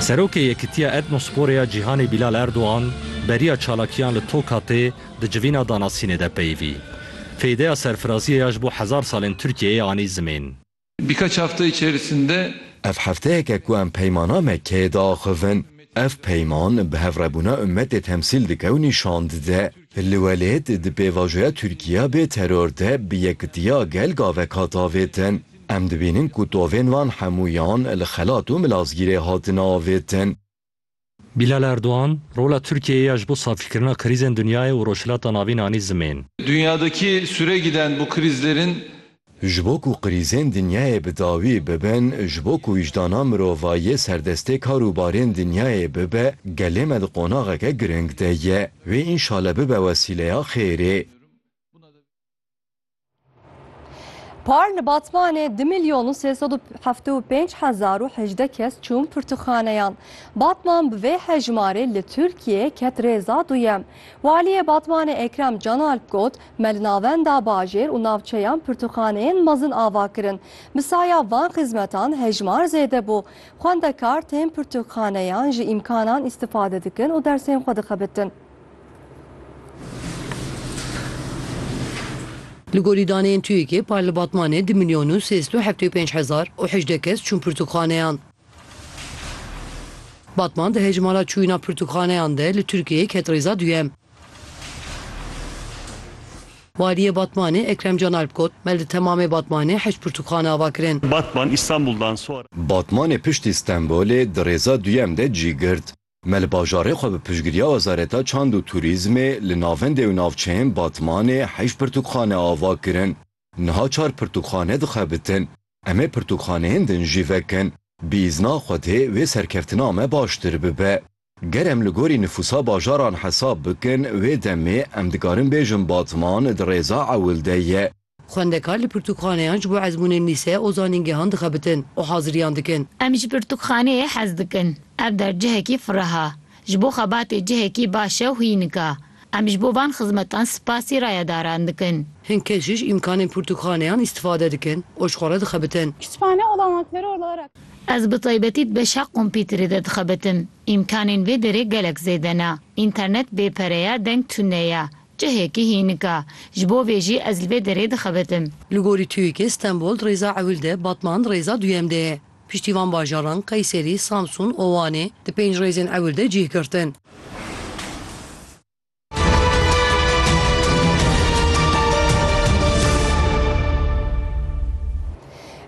Serokê Yekitiya Etnosporê ya Cîhanê Bîlal Erdogan beriya çalakiyan li Tokatê di civîna danasînê de peyivî. Feydeya serfiraziyê ya ji bo hezar salên Tirkiyeyê anî zimên. Birkaç hafta içerisinde. Ev hefteyek e ku em Peymana Mekkeyê diaxivin. Ev peyman bi hevrebûna ummetê temsîl dike û nîşan dide, li welêt di pêvajoya Tirkiya bê teror de bi yekitiya gel gavek hat avêtin. Em dibînin ku tovên wan hemûyan li xelat û milazgîrê hatin avêtin. Bilal Erdogan, Rola Tirkiyeyê ya ji bo safîkirina krîzên dinyayê û Rojhilata Navîn anî zimên. Dünyadaki süregiden bu krizlerin. Ji bo ku krîzên dinyayê bi dawî bibin, ji bo ku wijdana mirovayiyê serdestê kar û barên dinyayê bibe, gelê me di qonaxeke giring de ye. Wê înşale bibe wesîleya xêrê. Par li Batmanê di milyon û sê sed û heft û pênc hezar û hejdeh kes çûn pirtûkxaneyan. Batman bi vê hejmarê li Tirkiyeyê ket rêza duyem. Waliyê Batmanê Ekrem Canalp got, Me li navenda bajêr û navçeyan pirtûkxaneyên mezin ava kirin. Bi saya van xizmetan hejmar zêde bû. Xwendekar tên pirtûkxaneyan ji îmkanan îstifade dikin û dersên xwe dixebitin. Li gorî daneyên TUYK'ê par li Batmanê du milyon û sê sed û heftê û pênc hezar û hejdeh kes çûn pirtûkxaneyan. Batman di hejmara çûyîna pirtûkxaneyan de li Tirkiyeyê ket rêza duyem. Waliyê Batmanê Ekrem Can Alp got, Me li temamê Batmanê heşt pirtûkxane ava kirin. Batman, Îstanbuldan sonra. Batmanê piştî Stenbolê di rêza duyem de cî girt. Me li bajarê xwe bi piştgiriya Wezareta Çand û Turîzmê li navendê û navçeyên Batmanê heşt pirtûkxane ava kirin. Niha çar pirtûkxane dixebitin. Em ê pirtûkxaneyên din jî vekin. Bi îzna Xwedê wê serkeftina me baştir bibe. Ger em li gorî nifûsa bajaran hesab bikin, wê demê em dikarin bêjin Batman di rêza ewil de ye. Xwendekar li pirtûkxaneyan ji bo ezmûnên lîse û zanîngehan dixebitin û haziriyan dikin. Em ji pirtûkxaneyê hez dikin. Ev dercihekî firaha, ji bo xebatê cihekî baş e û hînik a. Em ji bo van xizmetan spasî rayedaran dikin. Hin kes ji ji îmkanên pirtûkxaneyan îstifade dikin û ji xwe re dixebitin. Kütüphane olanakları olarak. Ez bi taybetî di beşa kompîterê de dixebitim. Îmkanên vê derê gelek zêde ne. Înternet bê pere ye, deng tune ye. Cihêkî hînika. Ji bo vê jî ez li vê derê dixebitim. Li gorî TUYK'ê Stenbol rêza ewil de, Batman rêza duyem de ye. Piştî van bajaran, Qeyserî, Samsun û Wanê di pênc rêzên ewil de cih girtin.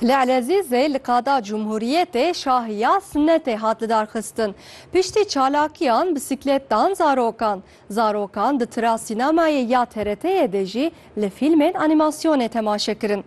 Li Elezîzê li qada Cumhuriyetê şahiya sinetê hat lidarxistin. Piştî çalakiyan, bisikletan, zarokan, Zarokan di tira sînemayê ya TRT'ê de jî li fîlmên anîmasyonê temaşe kirin.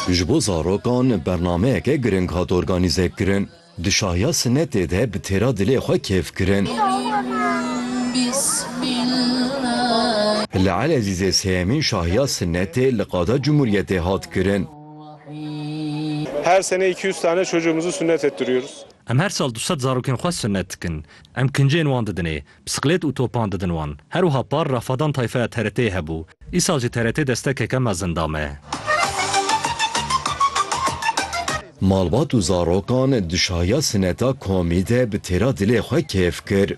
Ji bo zarokan bernameyeke giring hat organîze kirin. Di şahiya sinetê de bi têra dilê xwe kêf kirin. Li Elezîzê sêyemîn şahiya sinetê li Qada Cumhuriyetê hat kirin. Her sene iki yüz tane çocuğumuzu sünnet ettiriyoruz. Em her sal du sed zarokên xwe sunnet dikin. Em kincên wan didinê. Bisiklêt û topan didin wan. Her wiha par Rafadan tayfeya TRT'ê hebû. Îsal jî TRT destekeke mezin da me. Malbat û zarokan di şahiya sineta komî de bi têra dilê xwe kêf kir.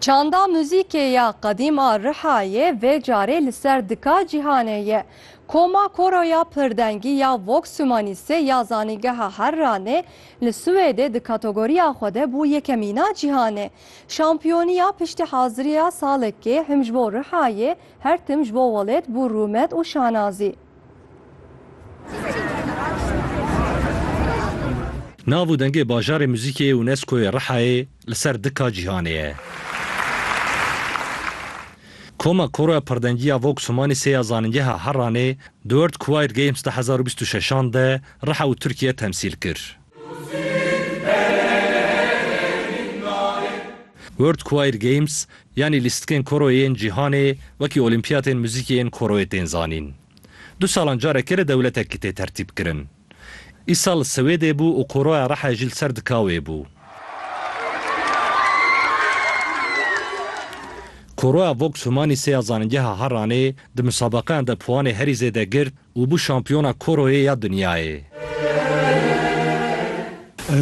Çanda muzîkê ya qedîm a Rihayê vê carê li ser dika cîhanê ye. Koma Koro ya Pirdengî ya Vox Humaniste ya Zanîngeha Harranê li Swêdê di kategoriya xwe de bû yekemîna cîhanê. Şampiyoniya piştihaziriya salekê him ji bo Rihayê her tim ji bo welêt bû rûmet û şanazî. Nav û dengê Bajarê Muzîkê yê UNESCO'yê Rihayê li ser dika cîhanê ye. Koma Koroya Pirdengiya Vox Humani sê ya Zanîngeha Heranê di World Choir Games du hezar û bîst û şeş an de Riha û Tirkiye temsîl kir. World Choir Games yanî lîstikên koroyê yên cîhanê wekî olîmpiyatên muzîkê yên koroyê tên zanîn. Du salan carekê li dewletekî tê tertîb kirin. Îsal li Swêdê bû û koroya Rehe jî li ser Dikawê bû. Koroya Vox Humanisê ya Zanîngeha Harranê di musabeqeyan de puwanê herî zêde girt Û bû şampiyona koroyê ya dinyayê.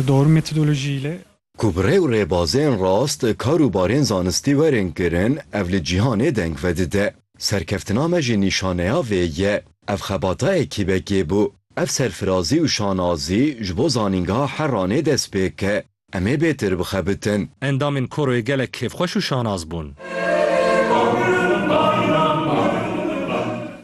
Doğru metodoloji ile. Ku bi rê û rêbazên rast kar û barên zanistî werin kirin, ev li cîhanê deng vedide. Serkeftina me jî nîşaneya vê ye. Ev xebata ekîbekê bû. Ev serfirazî û şanazî ji bo zanîngeha Herranê dest pê ke. Em ê bêtir bixebitin. Endamên koroyê gelek kêfxweş û şanaz bûn.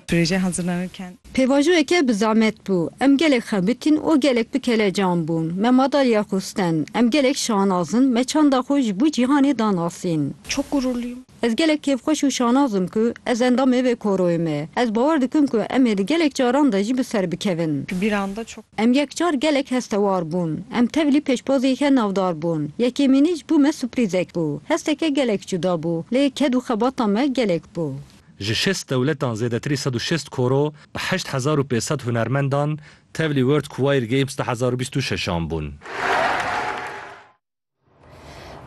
Proje hazırlanırken. Pêvajoyeke bi zehmet bû. Em gelek xebitîn û gelek bi kelecan bûn. Me madalya xwestin. Em gelek şanaz in. Me çanda xwe ji bo cîhanê danasîn. Çok gururluyum. Ez gelek kêfxweş û şanaz im ku ez endamê vê koroyê me. Ez bawer dikim ku em ê di gelek caran de jî bi ser bikevin. Em yek car gelek hestewar bûn. Em tevlî pêşbaziyeke navdar bûn. Yekêmînî ji bo me suprizek bû. Hesteke gelek cuda bû, lê ked û xebata me gelek bû. Ji şêst dewletan zêdetirî sed û şêst koro bi heşt hezar û pênc sed hunermendan tevlî World Choir Games du hezar û bîst û şeş an bûn.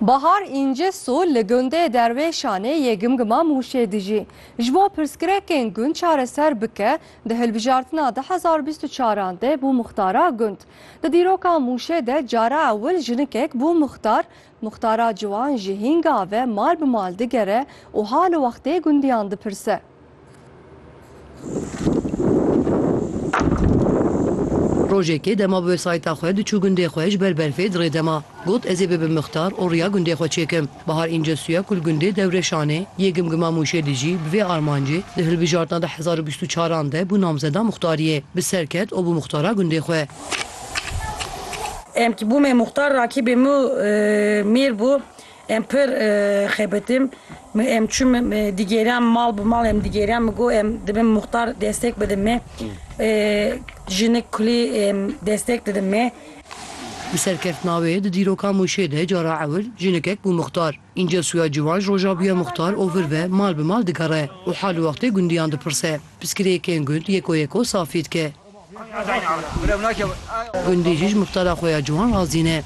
Bahar Încesu li gundê Derwêşanê yê Gimgima Mûşê dijî. Ji bo pirsgrekên gund çareser bike, di hilbijartina du hezar û bîst û çar an de bû muxtara gund. Di dîroka Mûşê de cara ewil jinikek bû muxtar. Muxtara ciwan ji hînga ve mal bi mal digere û hal û wextê gundiyan dipirse. Rojekê dema bi wesayîta xwe diçû gundê xwe ji ber berfê di rê de ma. Got ez ê bibim mixtar û riya gundê xwe çêkim. Bahar Încesuya ku li gundê Dewreşanê yê Gimgima Mûşê dijî bi vê armancê di hilbijartina du hezar û bîst û çar an de bû namzeda muxtariyê. Bi ser ket û bû muxtara gundê xwe. Em ki bûmê muxtar rakîbê min û mêr bû. Em pir xebitim. Mi em çûm mi digêran mal bi mal em digêran mi got em dibin muxtar destek bidin me. Jinik kulî em destek didin me. Bi serkeftina wê di dîroka Mûşê de cara ewil jinikek bû muxtar. Înca sûya ciwan ji roja bûye muxtar û vir ve mal bi mal digere û hal û wextê gundiyan dipirse. Piskirêkên gund yeko yeko safî dike. Gundî jî ji muxtara xwe ya ciwan razî ne.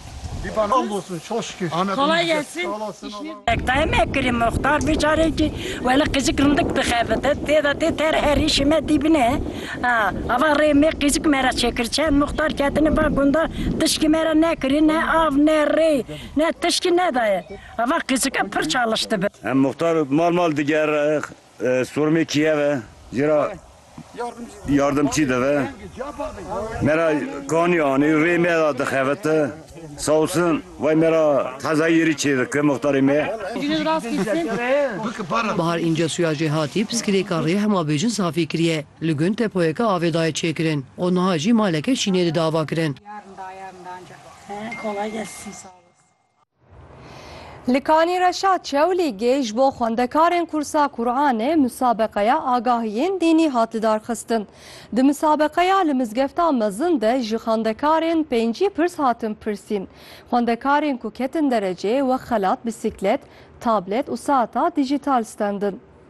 Ektayê me kirî muxtar vê carê kî wele qîzik rindik dixebite tê de tê ter herî şime dîbine ha ava rê mê qîzik me re çêkir çend muxtar ketine va gunda tişkî me re nekirî ne av ne rê ne tişkî nedaye ava qîzike pir çaliştibe. Muxtar mal mal digere sormê kî ye ve jê ra. Yardımçî deve. Me ra kanî anî rê me ra dixevite. Sağ olsun vay me ra heza yerî çêdike muxtarê me. Bahar Încesuya jê hatî piskilêka rê hema bêjin safî kiriye. Li gund depoyeke avê daye çêkirin û niha jî maleke şînê dide avakirin. Li Kanî Reşa Çewlîgê ji bo xwendekarên kursa Quranê musabeqeya agahiyên dînî hat lidarxistin. Di musabeqeya li mizgefta mezin de ji xwendekarên pêncî pirs hatin pirsîn. Xwendekarên ku ketin dereceyê wek xelat, bîsîklet, tablet û saeta dîjîtal stendin.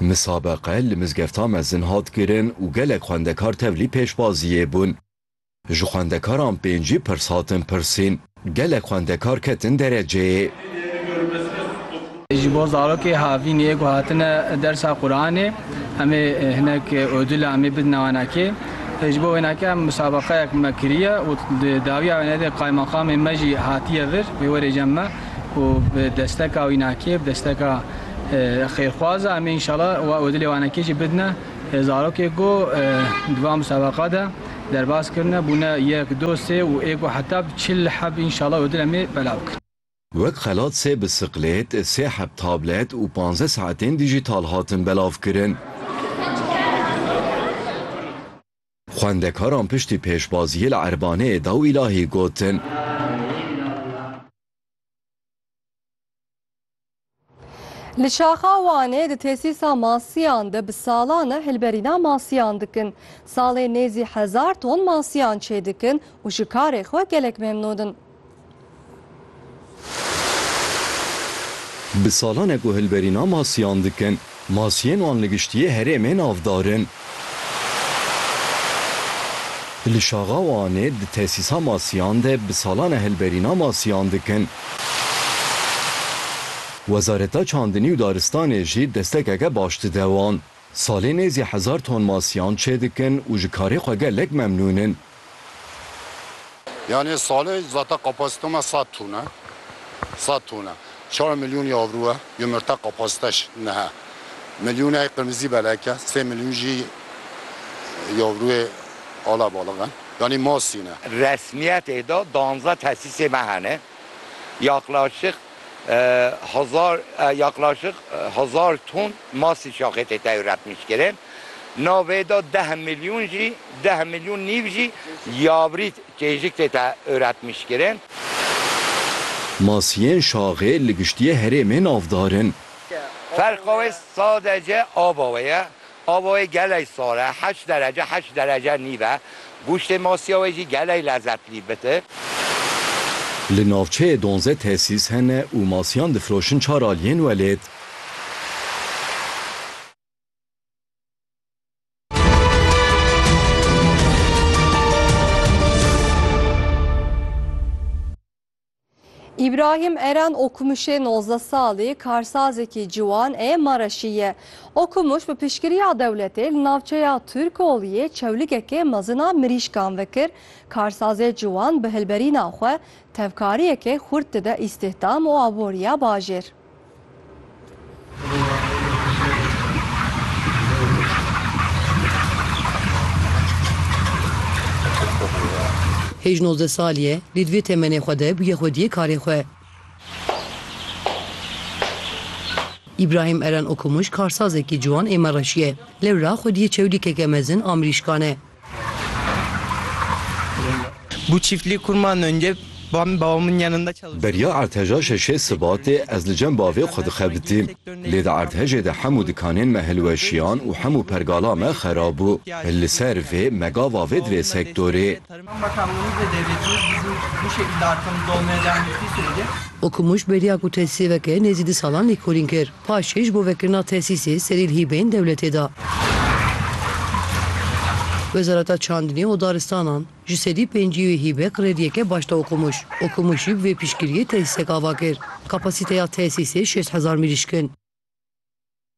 Misabeqe li mizgefta mezin hat kirin û gelek xwendekar tevlî pêşbaziyê bûn. Ji xwendekaran pêncî pirs hatin pirsîn. Gelek xwendekar ketin dereceyê. Ji bo zarokê havîn ê ku hatine dersa Quranê em ê hinek odula em ê bidine wan akê. Ji bo wênakê em misabeqeyek me kiriye û di dawiya wê nedê qaymaqamê me jî hatiye vir wê werê cem me. û bi desteka wî nakê, bi desteka xêrxwaza em ê înşala û dilê wan ekê jî bidine zarokê ku di van musabeqa de derbas kirine, bûne yek, du, sê û ê ku heta bi çil heb înşala û dil em ê belav bikin. Wek xelat sê bisiklêt, sê heb tablet û panzdeh saetên dîjîtal hatin belavkirin. Xwendekaran piştî pêşbaziyê li Erbaneyê daw îlahî gotin. Li şaxa Wanê di tesîsa masiyan de bi salan e hilberîna masiyan dikin. Salê nêzî hezar ton masiyan çêdikin û ji karê xwe gelek memnûn in. Bi salan e guhilberîna masiyan dikin. Masiyên wan li giştiyê herêmê navdar in. Li Şaxa û Anê di tesîsa masiyan de bi salan e hilberîna masiyan dikin. Wezareta Çandinî û Daristanê jî destekeke baş dide wan. Salê nêzî hezar ton masiyan çêdikin û ji karê xwe gelek memnûn in. Yanê salê zata kapasîte ma sed ton e. Sed ton e. Çar milyonî avro e. Yumurte kapasîte şi niha milyoneyî qirmizî belek e. Sê milyon jî yavroyê ala baliq e. Yanî ma sîn e. Resmîyetê de danze tesîsê me hene. Yaklaşık hezar yaklaşık hezar ton masî şaxê tê tewretnîşkirin. Na vê de deh milyon jî deh milyon nîv jî yavrît kêjik tê tewretnîşkirin. Masiyên şaxê li giştiyê herêmê navdar in. Ferqa wê sadece ava wê ye. Ava wê gelek sar e, heşt derece heşt derece nîv e. Goştê masiya wê jî gelek lezetlî bit e. Li navçeyê donze tesîs hene û masiyan difiroşin çar aliyên welêt. İbrahim Eren Okumuşê nozdeh salî karsazekî ciwan ê Mareşî ye. Okumuş bi piştgiriya dewletê li navçeya Turkoliyê çewligekê mezin a mirîşkan vekir. Karsazê ciwan bi hilberîna xwe tevkariyekê xurt dide îstihdam û aboriya bajêr. Hêj nozdeh salî ye, lê di vê temenê xwe de bûye xwediyê karê xwe. Îbrahîm Eren Okumuş karsazekî ciwan ê Mereşî ye. Lewra xwediyê çewlîkeke mezin a mirîşkan e. Beriya erdheja şeşê Sibatê ez li cem bavê xwe dixebitîm. Lê di erdhejê de hemû dikanên me hilweşiyan û hemû pergala me xerab bû. Li ser vê me gava vê divê sektorê. Okumûş beriya ku te sêveke nêzî du salan lêkolîn kir. Paşê ji bo vekirina tesîsê serî li hîbeyên dewletê de. Wezareta Çandinê û Daristanan ji sedî pêncî wê hîbe krediyê ke başda Okumûş. Okumûş jî bi vê piştgiriyê tesîsek ava kir. Kapasîteya tesîsê şêst hezar mirîşk in.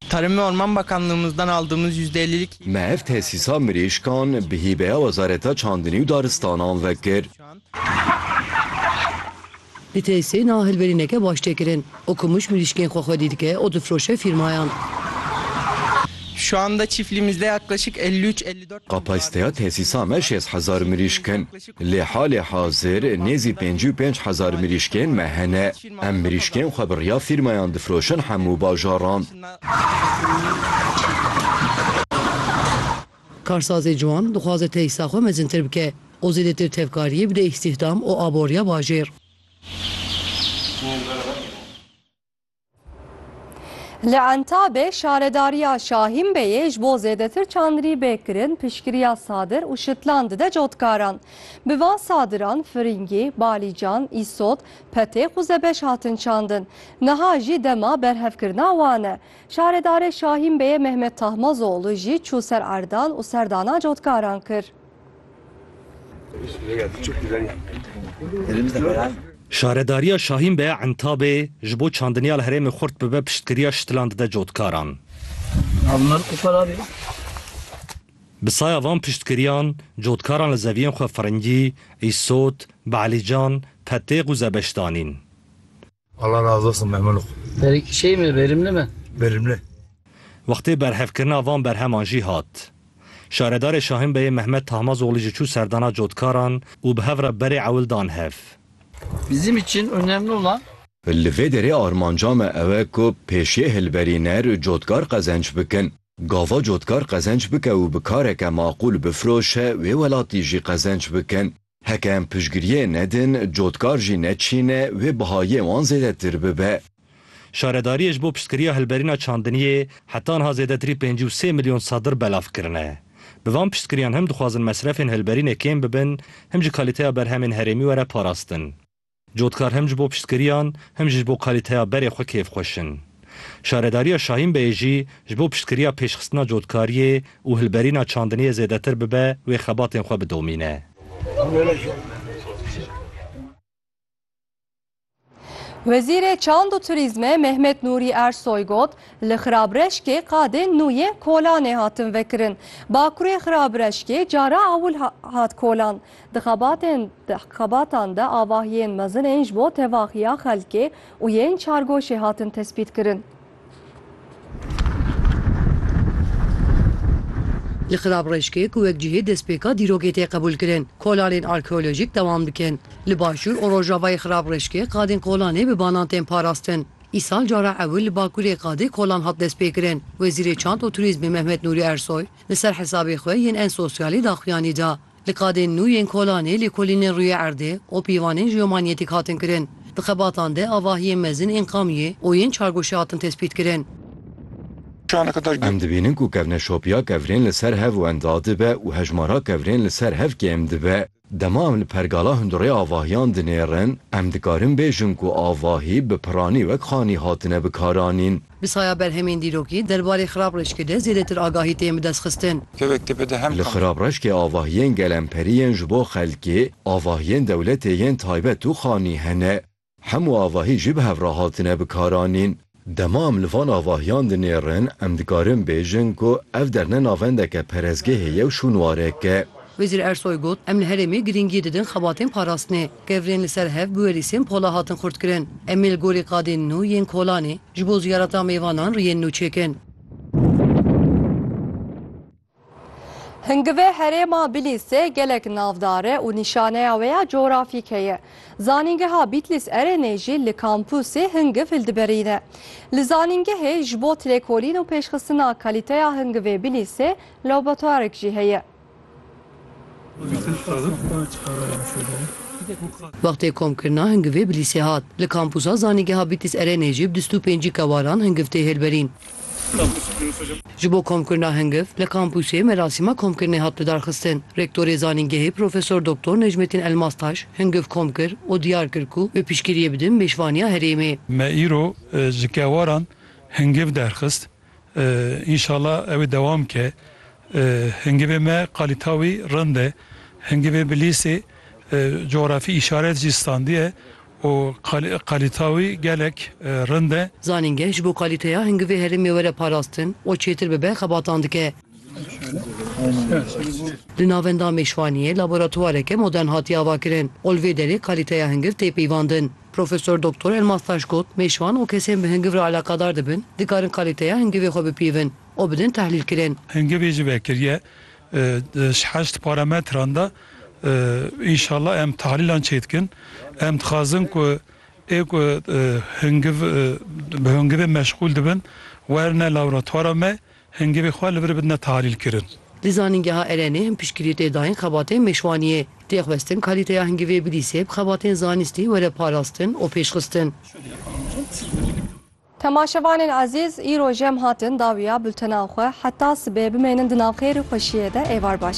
Tarım ve Orman Bakanlığımızdan aldığımız yüzde ellilik. Me ev tesîsa mirîşkan bi hîbeya Wezareta Çandinî û Daristanan vekir. Li tesî na hilberîneke baş tê kirin û ku mij mirîşkên xwe xwedî dike û difroşe fîrmayan. Şu anda çiftliğimizde yaklaşık elli üç elli dört bin dolar Kapasiteya tesîsa me şêst hezar mirîşk in. Lê halê hazir nêzî pêncî û pênc hezar mirîşkên me hene. Em mirîşkên xwe bi riya fîrmayan difroşin hemû bajaran. Karsazê ciwan dixwaze teysa xwe mezintir bike û zêdetir tevkariyê bide îstîhdam û aboriya bajêr. Li Entabê şaredariya Şahînbeyê ji bo zêdetir çandrî bê kirin piştgiriya sadir û şitlan dide cotkaran. Bi van sadiran firingî, balîcan, îsot, petêx û zebeş hatin çandin. Niha jî dema berhevkirina wan e. Şaredarê Şahîn Beyê Mehmet Tahmazoğlu jî çû ser erdan û serdana cotkaran kir. Şaredariya Şahîn Beya Entabê ji bo çandiniya li herêmê xurt bibe piştgiriya şitilan dide cotkaran. Bi saya van piştgiriyan cotkaran li zeviyên xwe Firingî, Îsot, Be'lîcan, Petêx û Zebeş danîn. Allah razı olsun memnun oldum. Berek şey mi verimli mi? Verimli. Wextê berhevkirina van berheman jî hat. Şaredarê Şahin Beyê Mehmet Tahmazoglî jî çû serdana cotkaran û bi hev re berê ewil dan hev. Bizim için önemli olan. Li vê derê armanca me ew e ku pêşiyê hilberîner cotkar qezenç bikin. Gava cotkar qezenç bike û bi kareke maqûl bifroşe wê welatî jî qezenç bikin. Heke em piştgiriyê nedin, cotkar jî neçîne, wê bihayê wan zêdetir bibe. Şaredariyê ji bo piştgiriya hilberîna çandiniyê heta niha zêdetirî pêncî û sê milyon sadir belav kirine. Bi van piştgiriyan him dixwazin mesrefên hilberînê kêm bibin, him jî kalîteya berhemên herêmî were parastin. Cotkar hem ji bo piştgiriyan hem jî ji bo kalîteya berê xwe kêfxweş in. Şaredariya Şahînbeyê jî ji bo piştgiriya pêşxistina cotkariyê û hilberîna çandiniyê zêdetir bibe wê xebatên xwe bidomîne. Wezîrê Çand û Turîzmê Mehmet Nûrî Ersoy got, Li Xirabreşkê qadên nû yên kolanê hatin vekirin. Bakurê Xirabreşkê cara ewil hat kolan. Di xebatên di xebatan de avahiyên mezin ên ji bo tevaxiya xelkê û yên çargoşê hatin tespîtkirin. Li Xirabrêşkê ku wek cihê destpêka dîrokê tê qebûlkirin, kolanên arkeolojîk dewam dikin. Li başûr û rojavayê Xirabrêşkê qadên kolanê bi banan tên parastin. Îsal cara ewil li Bakurê qadê kolan hat destpêkirin. Wezîrê Çand û Turîzmê Mehmet Nûrî Ersoy li ser hesabê xwe yên en sosyalê daxuyanî da. Li qadên nû yên kolanê lêkolînên rûyê erdê û pîvanên jeomanyetîk hatin kirin. Di xebatan de avahiyên mezin ên qamyê û yên çargoşê hatin tespîtkirin. Em dibînin ku kevneşopiya kevirên li ser hev wenda dibe û hejmara kevirên li ser hev kêm dibe. Dema em li pergala hundirê avahiyan dinêrin, em dikarin bêjin ku avahî bi piranî wek xanî hatine bikaranîn. Bi saya berhemên dîrokî derbarê xirab reşkê de zêdetir agahî tên bidestxistin. Li xirab reşkê avahiyên gelemperî yên ji bo xelkê, avahiyên dewletê yên taybet û xanî hene. Hemû avahî jî bi hev re hatine bikaranîn. Dema em li van avahiyan dinêrin, em dikarin bêjin ku ev derne navendeke perezgehê ye û şûnwareke. Wezîr Ersoy got, Em li herêmê girîngî didin xebatên parastinê. Kevirên li ser hev bi werîsên pola hatin xurtkirin. Em ê li gorî qadên nû yên Kolanê ji bo ziyareta mêvanan riyên nû çêkin. Hingivê herêma Bilîsê gelek navdar e û nîşaneya wê ya cografîk heye. Zanîngeha Bîtlîs Erênê jî li kampûsê hingiv hildiberîne. Li zanîngehê ji bo lêkolîn û pêşxistina kalîteya hingivê Bilîsê laboratwarek jî heye. Wextê komkirina hingivê bilîsê hat. Li kampusa zanîngeha Bîtîs Erenê jî bi dust û pêncî kewaran hingiv tê hêlberîn. Ji bo komkirina hingiv li kampusê merasîma komkirinê hat lidarxistin. Rektorê zanîngehê Profesor Doktor Necmettin Elmastaş hingiv kom kir û diyar kir ku bi piştgiriyê bidin mêşvaniya herêmê. Me îro ji kewaran hingiv derxist. Înşala ew ê dewam bike. Hingivê me qalîta wî rind e. Hingivê bi lîsê cografî îşaret jî standiye û qalîta wî gelek rind e. Zanîngeh ji bo qalîteya hingivê herêmê were parastin û çêtir bibe xebatan dike. Li Navenda Mêşvaniyê laboratwareke modern hatiye avakirin û li vê derê qalîteya hingiv tê peyvandin. Profesor Doktor Elmastaş got, Mêşvan û kesên bi hingiv re alaqadar dibin, dikarin kalîteya hingivê xwe bipîvin û bidin tehlîlkirin. Hingivê jî vekiriye di heşt parametran de. Înşallah em tehlîlan çêdikin. Em dixwazin ku ê ku hingiv bi hingivê meşxûl dibin, werne laboratwara me Hingevê xwe li vir bidine tahlîlkirin. Di zanîngeha Erenê him piştgirî tê dayîn xebatên mêşvaniyê. Tê xwestin kalîteya hingevê bilîsê bi xebatên zanîstî were parastin û pêşxistin. Temaşevanên ezîz, îro jê em hatin dawiya bultenan xwe. Heta sibê bimênin di navxêr û xweşiyê de êvar baş.